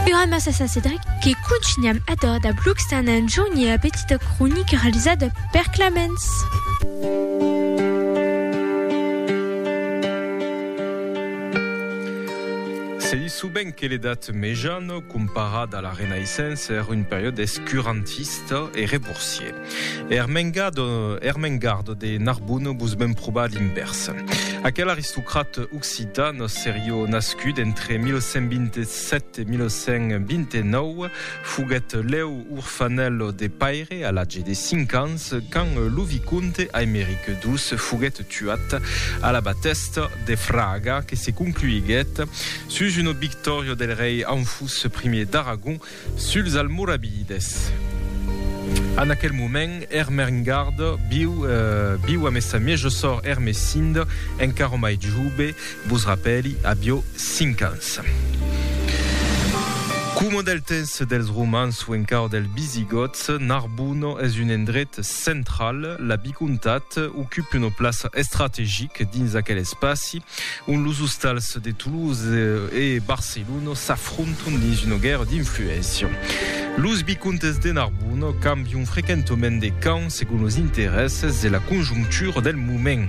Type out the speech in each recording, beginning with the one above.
Era massa sa Cedric que contunham a dor da blogs tan enjorn e a petita cronica realizada per Clamens. Se ditz sovent que l'Edat Mejana, comparada a la Renaissença, èra un periòde escurantista e reborsier. Er mengado, er mengardo de Narbona vos ven probar l'invèrs. Aquel aristocrat occitan serió nascut entre 1127 e 1129 foguèt lèu orfanèl de paire a l'atge de cinc ans quand lo vicomte Aimeric ii foguèt tuat a la batèsta de Fraga que se concluiguèt sus una victòria del rei Anfús I d'Aragon Suls Almoravides. En aquel moment, Ermengarde viu, viu amé sa mieja sòr Ermesinde, encara mai jove, vos rapèli, avió cinc ans. Coma del temps dels Romans o encara dels Visigòts, Narbona es un endret central, la vicomtat ocupe una plaça estrategica dins aquel espaci, ont los ostals de Toulouse e Barcelona s'afrontan. Tronton dins una guèrra d'influéncia. Los vicomtes de Narbona cambion frequentament de camp segon los interèsses e la conjonctura del moment.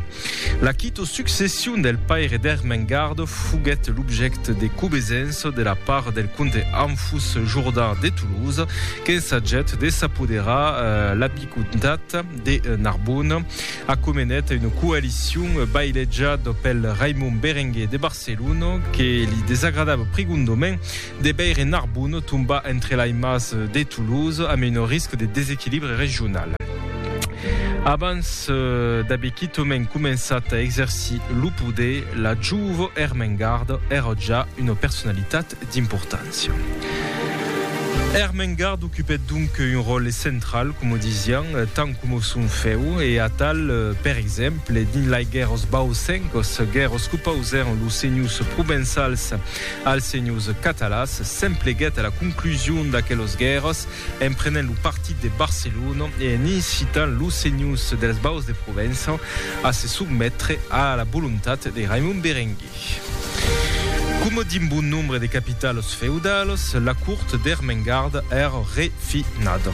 La quito succession del paire d'Ermengard foguèt l'objècte de cobesença de la part del comte Anfus Jourdan de Toulouse qu'ensagèt de s'apoderar la vicomtat de Narbona. Acomenèt una coalicion bailejada pel Raimon Berenguer de Barcelona. Celluno, que li desagradava prigondament de veire Narbonne tombar entre lei mas de Toulouse amb un risc de desequilibre regional. Abans d'aver quitament començat a exercir lo poder, la jouvo Ermengarde èra ja una personalitat d'importància. Ermengarde ocupèt donc un ròle central, coma disián, tant coma son fèu, e atal, per exemple, dins lai guèrras bausencas, guèrras qu'opausèron los senhors provençals als senhors catalans, s'empleguèt a la conclusion d'aquelas guèrras en prenent lo partit de Barcelona e en incitant los senhors dels Baus de Provença a se sotmetre a la volontat de Raimon Berenguer. Coma d'un bon nombre de capitals feudalas, la cort d'Ermengarda èra refinada.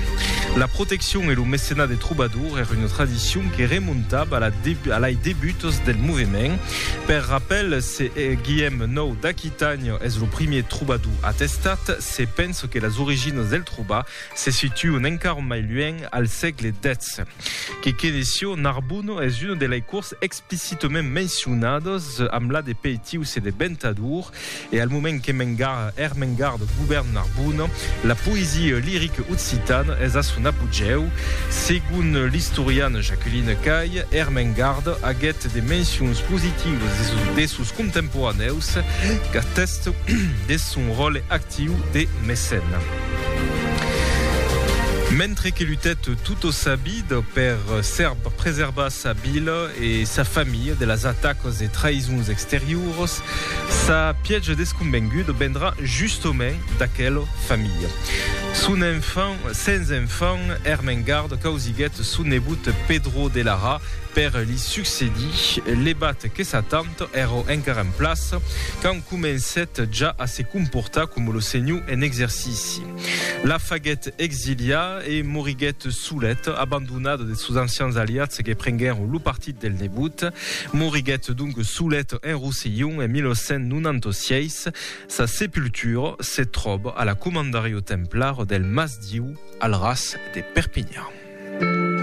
La proteccion e lo mecenat de trobadors èra una tradicion que remontava a lai debutas del movement. Per rapèl, se Guillem ix d'Aquitània es lo primièr trobador atestat, se pensa que las originas del trobar se situan encara mai luènh al sègle xvi. Que queneission, Narbona es una de lai cors exp. picitement mencionados, amb la de peitius e de ventador, e al moment que Mengar, er Mengar de Gubern Narbona, la poesia lirica occitana es a son apogèu. Segon l'istoriana Jacqueline Cay, er Mengar aguèt de mencions positivas de sos, de sos contemporanèus, qu'atèste deth son ròle actiu de mecèna. Mentre que lutèt totosabida per ser preservas sa vila e sa familha de las atacas e traïsons exterioras, sa pièja desconvenguda vendrà justament d'aquela familha. Son enfant, sens enfant, Ermengarda causiguèt son nebot Pedro de Lara per li succedir, levat que sa tanta èra encara en plaça quand comencèt ja a se comportar coma lo senhor en exercici. La faguèt exiliar e moriguèt solet, abandonat de sos ancians aliats que prenguèron lo partit del nebot. Moriguèt donc solet en Rosselhon en 1896. Sa sepultura se tròba a la Comandariu Templar del Mas Diu al ras de Perpinhan.